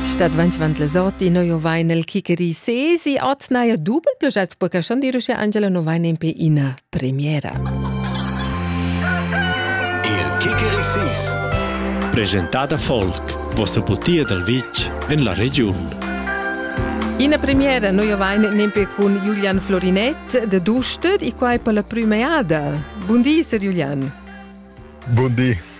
Stat ventgevant les orti no jo vai nel chicheri sesi at naja dubel proget perché schon dirusche Angela no vai nempe ina premiera. Il chicheri sis Presentada Folk, vossa putia dal vitg en la regiun. Ina premiera noi ovain nempe cun Julian Florinet de Duster e quai per la prima jada. Buondì, Sir Julian. Buondì.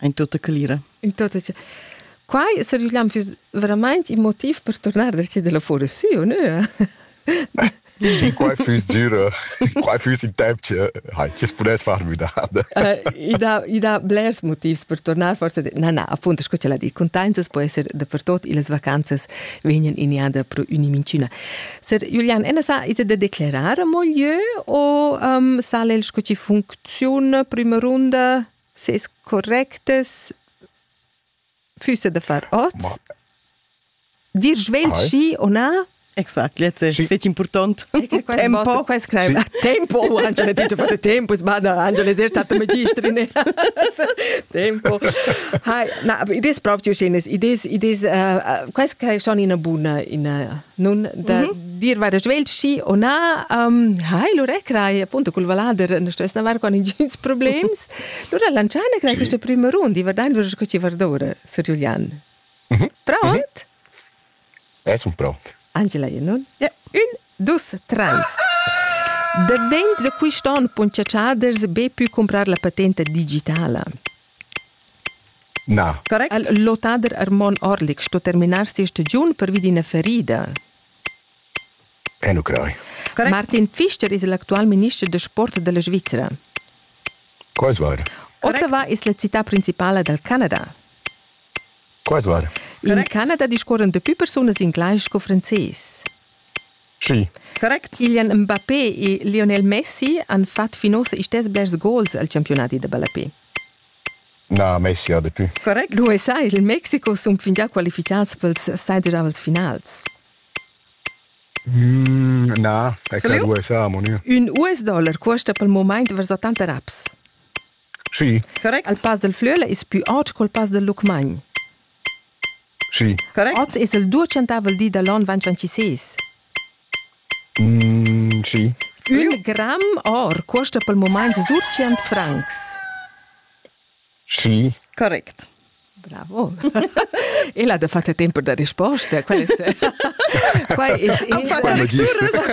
in tutta calira. In tutta Quai sur il füs verament il motiv per tornar da si della fuori su, no? I quai füs dura, quai füs in temp che hai, che pudess far müdada. I dà, i dà blers motivs per tornar, forse, na, na, appunto, sco ce l'ha dit, contanzas può essere dappertut e las vacanzas vegnan iniada pro unimincina. Ser Julian, ena sa, is da declarare mo lieu o um, sale el sco ci funziona prima runda? Ses correctas füssa da far ot. Ma dir svegl Vai. schi o na? Exact, jetzt è fece importante tempo. Qua scrive tempo, Angela ti ha fatto tempo, sbada, Angela è stata magistrin. tempo. Hai, na, idee proprio schönes, idee, idee, uh, qua scrive schon in una buona, in nun da mhm. dir vaira svelt schi o na um, hai lura crai appunto cul valader non stess anar con intgins problems lura lanciana crai questa prima runda vardando vero che ci vardora Sir Giulian mhm. pronto eh sono pronto Angela non yeah. un dus trans Da vent de quist on puncha chaders be pü comprar la patenta digitala. Na. Correct. El lotader Armon Orlik sto terminar sia stagiun pervi d'ina ferida. E nu crei. Correct. Martin Pfister es l'actual minister da sport della Svizzera. Quais vair? Ottawa es la città principala dal Canada. Quais vair? In Canada discorren dapü persunas in glais sco frances. Schi. Correct. Kylian Mbappé e Lionel Messi han fatg fin ussa istess blers gols al campiunadi da ballapè. Na, Messi ha dapü. Correct. L'USA e il Mexico sun fingià qualifichats pels seiderdavels finals. Mm, na, è che l'USA, mon io. Ün US dollar cuosta pel momaint vers 80 raps. Sì. Correct. Al Pass del Flöle es pü aut col Pass del Lucmagn. Schi. Correct. Oz es il duecentavel di da l'on ventventisés. Mm, schi. Ün gram or cuosta pel mumaint surtschient francs. Schi. Correct. Bravo. e là de fatto tempo da risposta, qual è? qual è? Quai es lecturas.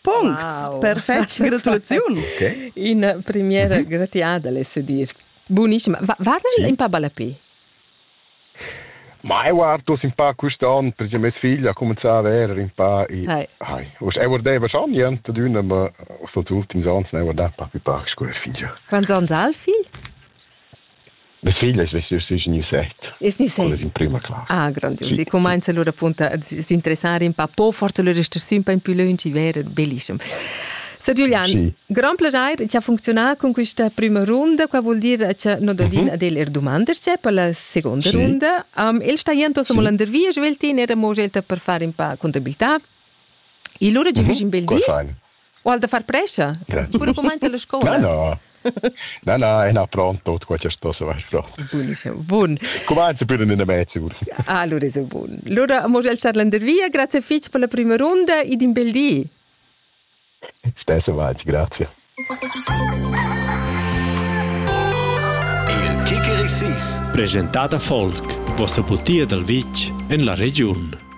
Puncts wow. per fetg gratuiziun. Okay. Ina premiera mhm. gratiada, lesse dir. Bunissima. Varda sì. un pa balapi? Ma eu artus un pa quest'anno, perché mia figlia ha cominciato a vedere un po' i... Hai. Hai. Und er wurde schon niente d'una, ma aus den ultims Jahren eu guardava un po' più pax con la figlia. Quanti anni ha il figlio? Mia figlia es vessia sü in set. Es gnü set? Quella in prima classa. Ah, grandius. Sì. E cumainza allura appunto a s'interessare un pa po, forse allora stessi un po in più lungi, vero? Bellissimo. Sir Giulian, sì. grand piacere che ha funzionato con questa prima runda, qua vuol dire che non dodin uh-huh. del er domande c'è per la seconda sì. runda. Um, il sta jento sì. all'andervia, Sveltin era mo scelta per fare un po' contabilità. E allora ci uh-huh. in bel dì? Ual da far prescha? Cura cumainza la scola? Na, na. Na, na, ena pronto, tot quel che sto se vai pronto. Bun, bun. Cumanza pure in der Mädchen. Allora ah, ist bun. Allora amo el star landervia, grazie fitch per la prima runda ed in bel di. Stesse vai, grazie. Il Kikerisis, presentata folk, vostra putia dal vitch en la regiun.